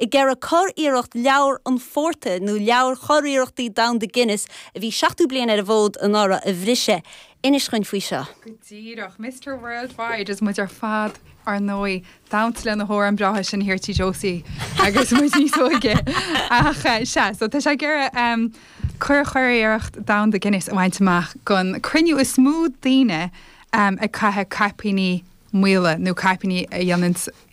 Ag iarraidh curiarracht Leabhar an Phortair, nó Leabhar Churiarrachtaí Domhanda Guinness, a bhí 70 bliain ar an bhfód anuraidh, a bhriseadh. Inis dhúinn faoi seo! Go díreach. Mister Worldwide is muid ar fad, ar ndóigh, ag damhsa leis na hamhráin bhreátha sin thiar Tigh Josie agus muid níos óige. Ach sea, so tá sé ag iarraidh cur- curiarracht domhanda Guinness a bhaint amach don cruinniú is mó daoine ag caitheamh caipíní maola nó caipíní a dhéananns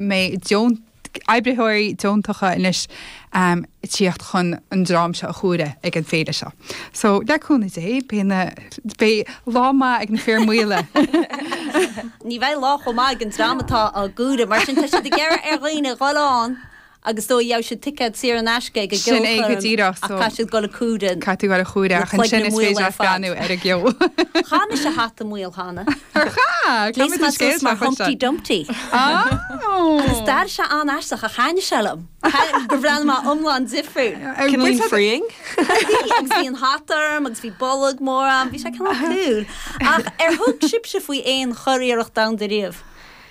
mbeidh deon- oibritheoirí deontacha anois ag tíocht chun an dream seo a chomhaireamh ag an féile seo. So, le cúnamh Dé, beidh na, beidh lá maith ag na fir mhaola. Ní bheidh lá chomh maith ag an dream atá á gcomhaireamh, mar sin tá siad ag iarraidh ar dhaoine dhul ann agus is dóigh gheobhaidh siad ticéad saor in aisce ag an Sin é go gceolchoirm díreach, ach so, caithfidh siad dul ag comhaireamh caithfidh dul ag comhaireamh na ach ansin cloigne is maola féidir ar leat fad. breathnú ar an gceol. Chaith mise hata maol cheana. Ar chaith? Caithfidh Ghléas muid an mé suas scéal mar seo chuir Humpty sé? Dumpty. Agus Oh! d'airigh sé an-aisteach ach thaitnigh sé liom. Thaitnigh gur bhreathnaigh mé iomlán difriúil. Ar Cineál bhfuil sé- freeing. Bhí, agus bhí an hata orm agus bhí bolg mór ann, bhí sé cineál cool. Ach ar thug sibhse faoi aon churiarracht domhanda riamh?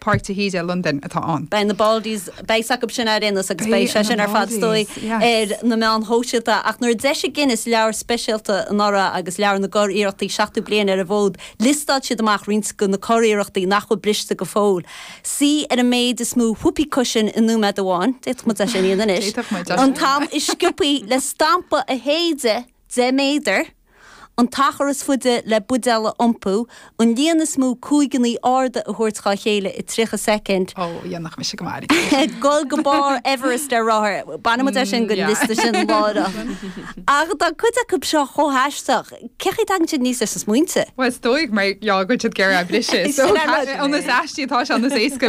Páirc de hÍde i Londain atá ann. Beidh na Baldies, beidh sé acu sin ar aon nós agus beidh sé sin ar fad is dóigh ar na meáin shóisialta ach nuair a d'eisigh Guinness leabhar speisialta anuraidh agus Leabhar na gCuriarrachtaí 70 Bliain ar an bhFód liostáil siad amach roinnt de na curiarrachtaí nach bhfuil briste go fóill. Suí ar an méid is mó whoopee cushion i nóiméad amháin, d'fhéadfadh muid é sin a dhéanamh anois, an t-am is sciopthaí le stampa a shéideadh 10 méadar, An t-achar is faide le buidéal a iompú, an líon is mó cúigeannaí arda a thabhairt dhá chéile i 30 soicind. Ó, dhéanfadh mise go maith é. Dul go barr Everest ar rothar, bainfidh muid é sin den liosta sin láithreach. Ach tá cuid acu seo chomh haisteach, cén chaoi a dtagann siad aníos leis na smaointe? Bhuel, is dóigh mar gheall go bhfuil siad ag iarraidh é a bhriseadh, so níos aistí atá sé, níos éasca.